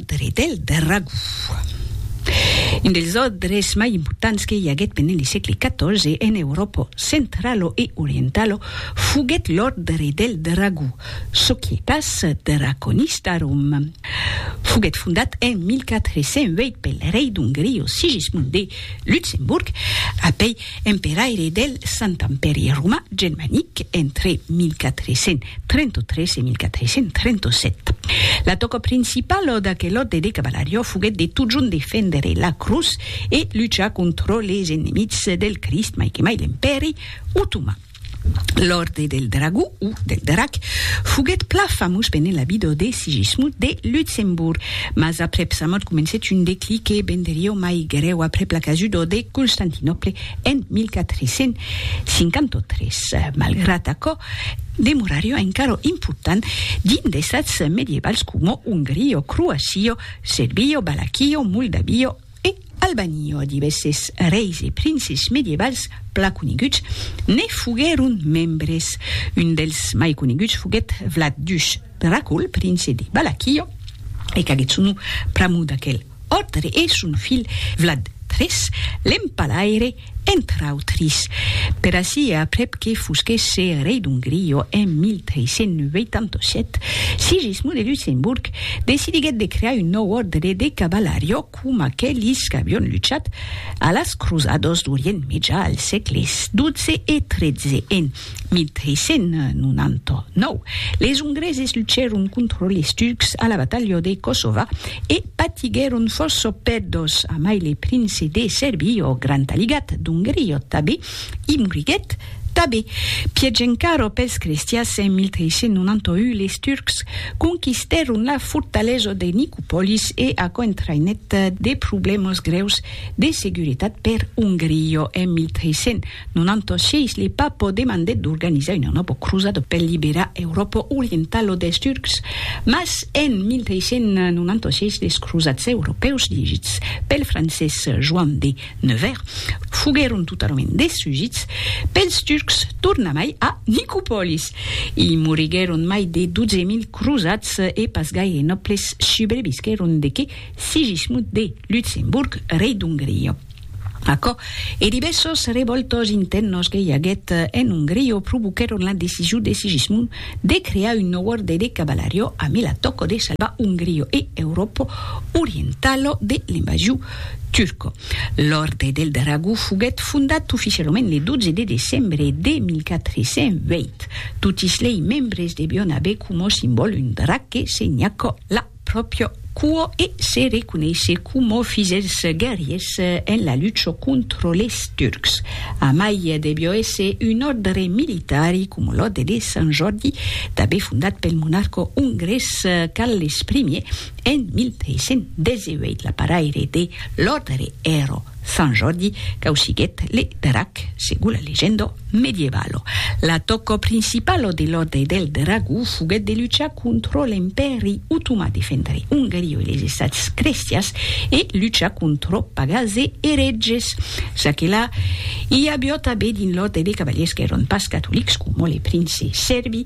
L'òdre del dragó. Un dels òdres mai importants que i aguèt pendent le sègle XIV en Euròpa centralo e orientalo foguèt l'òdre del dragó, Societas Draconistarum. Foguèt fondat en 1408 pel rei d'Ongria Sigismund de Luxemburg, apèi emperaire del Sant Empèri Romà Germanic entre 1433 e 1437. La tòca principala d'aquel òrde de cavalariá foguèt de totjorn defendre la crotz e luchar contra les enemics del Crist, mai que mai l'Empèri Otoman. L'Òrdre del Dragó, o del Drac, foguèt plan famós pendent la vida de Sigismund de Luxemborg, mas aprèp sa mòrt comencèt un declic que venderió mai grèu aprèp la casuda de Constantinòple en 1453. Malgrat aquò, demorarió encara important dins d'estats medievals coma Ongria, Croacia, Serbia, Valaquia, Moldavia, E Albaniò a divèsses reis e princes medievals plan coneguts ne foguèron membres. Un dels mai coneguts foguèt Vlad Dush Dracul, prince de Balakiò, e qu'aguèt son nom pr'amor d'aquel òrd e son filh Vlad iii, l'empalaire, entre autris, per ací e aprèp que fosquèsse rei d'Ongria en 1387, Sigismund de Luxemborg decidiguèt de crear un nòu òrdre de cavalariá com aquelis qu'avion luchat a las crosadas d'Orient Mejà al sègles xii e xiii en 1399, les Ongreses luchèron contra les Turcs a la batalha de Kosova e patiguèron fòrça pèrdas, amai le prince de Serbia, ò grand aligat d'Ongria tabé, i moriguèt tabé. Pièch encara pels crestians, en 1391 les Turcs conquistèron la fortalesa de Nicopolis e aquò entraïnèt de problèmas grèus de seguretat per Ongria en 1391. Non anto sièis li papo demandèt d'organizar una nòbo crosada per liberar Euròpa orientala dels Turcs, mas en 1396 les crosats europèus dirigits pel francés Joan de Nevers foguèron totalament destrugits pels Turcs tornamai a Nicopòlis. I moriguèron mai de 12.000 crosats e pas gaire nòbles subrevisquèron de que Sigismund de Luxemburg, rei d'Ongria. Aquò e divèssos revòltas intèrnas que i aguèt en Ongria provoquèron la decision de Sigismund de crear un nòu òrde de cavalaria amb la tòca de salvar Ongria e Euròpa orientala de l'invasion turca. L'Òrde del Dragó foguèt fondat oficialament le 12 de decembre de 1408. Totis lei membres devián aver coma simbòl un drac que senhaca la pròpria cua e se reconeisse coma fis dels guerriers en la lucha contra les Turcs. Amai devió èsser un òrdre militari, coma l'òrdre de Sant Jòrdi, tanben fondat pel monarca ongrés Carles I en 1318. L'aparaire de l'òrdre èra Sant Jordi causiguèt le drac, segon la legenda medievalo. L'atòca principala de l'Òrdre del Dragó foguèt de luchar contra l'Empèri Otomà, defendre Ongaria e les Estats crestians e luchar contra pagans e eretges. Ça que la, i aviá tanben dins l'Òrdre de Cavalièrs qu'èran pas catolics, coma le prince Sèrbi,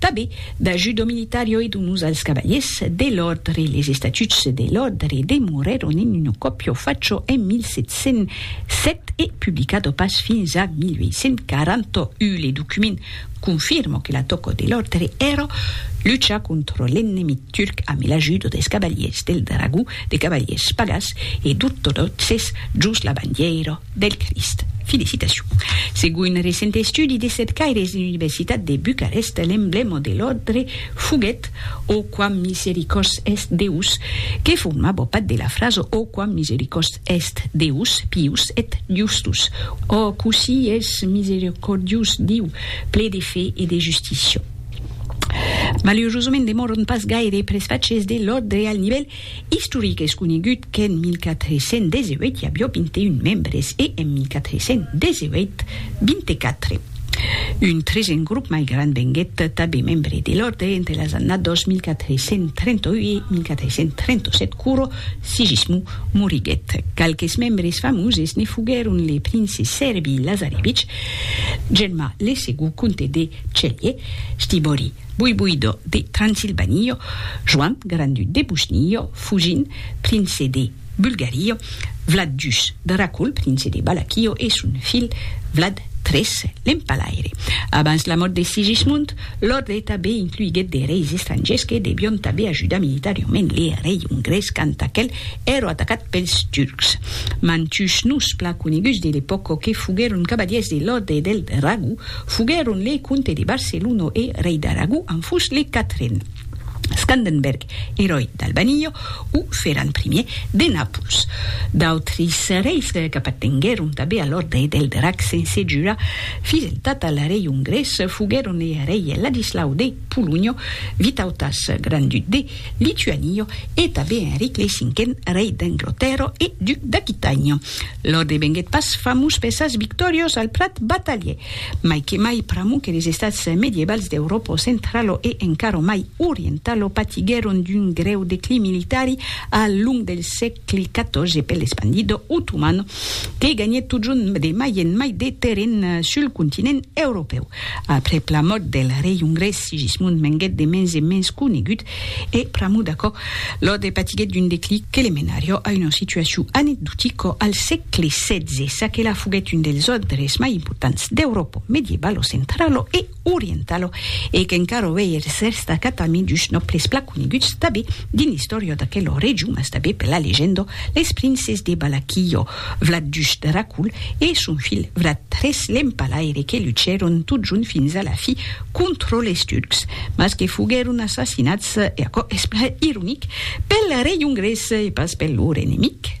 Tanben, da judo militario e d'unus als cavaliers de l'òrdre, les estatuts de l'òrdre demorèron in un còpio facho en 1707 e publicado pas fins a 1841. Le document confirma que l'atòca de l'òrdre èra luchar contra l'ennemi turc amb l'ajuda dels cavaliers del dragó, de cavaliers pagàs e d'ortodòxes jos la bandièira. Del Crist. Felicitacion. Segon un recent estudi de cercaires de l'Universitat de Bucarest, l'emblèma de l'òrdre foguèt O quam misericors est Deus, que formava part de la frasa O quam misericors est Deus, pius et justus, O cossí es misericordiós Diu, ple de fe e de justícia. Malurosament demòran pas gaire presfachers de l'òrdre al nivèl Istoric es conegut qu'en 1418 i avió 21 membres e en 1418, 24. Un tresen grop mai grand venguèt tanben membre de l'òrde entre las annados 1438 e 1437 quoro Sigismund moriguèt. Qualques membres famoses ne foguèron le prince Serbi Lazarevich, Germà le segond comte de Celje, Stibori, Buibuido de Transilvanio, Joan, Grand-Duc de Bosnio, Fugin, Prince de Bulgario, Vlad Jus, Dracul, Prince de Balakio e son filh Vlad tres, l'Empalaire. Abans la mòrt de Sigismund, l'òrdre tanben incluiguèt de reis estrangiers que devion tanben ajudar militariament le rei ongrés quand aquel èro atacat pels turcs. Mantuns noms plan coneguts de l'epòca que foguèron cavalièrs de l'òrdre del Dragó, Foguèron le comte de Barcelona e rei d'Aragó en fus le quatren, Scandenberg, eròi d'Albania, o Ferran Primièr de Nàpols. D'autris reis qu'apartenguèron tanben a l'òrdre del Drac sense jurar fideltat al rei ongrés foguèron le rei Ladislau de Polonha, Vitautas, grand-duc de Lituanio e tanben Enric lei cinquen, rei d'Anglotèrra e duc d'Aquitània. Lor devenguèt pas famós per sas victòrias al plat batalhièr, mai que mai pr'amor que les estats medievals d'Euròpa centrala e encara mai orientala patiguèron d'un grèu declin militari al long del sègle. clicato je pel espandido otomano que ganhèt totjorn de mai en mai de terren sul continent europèu. Aprèp la mòrt del rei ongrés Sigismund venguèt de mens en mens conegut e pr'amor d'aquò Laud patiguèt d'un declic que le menarió a una situacion anecdotica al sègle xvi, ça que la foguèt un dels òrdres mai importants d'Euròpa medievalo-centralo e orientalo e qu'encara auei eres rèsts d'acatami dus nòbles plan coneguts tanben dins l'istòria d'aquela region mas tanben per la legenda, les princes de Balaquillo, Vlad dus Dracul e son filh Vlad tres l'Empalaire que luchèron tot junt fins a la fi contra les Turcs mas que foguèron assassinats, e aquò es plan ironic, pel rei ongrés e pas per lor enemic.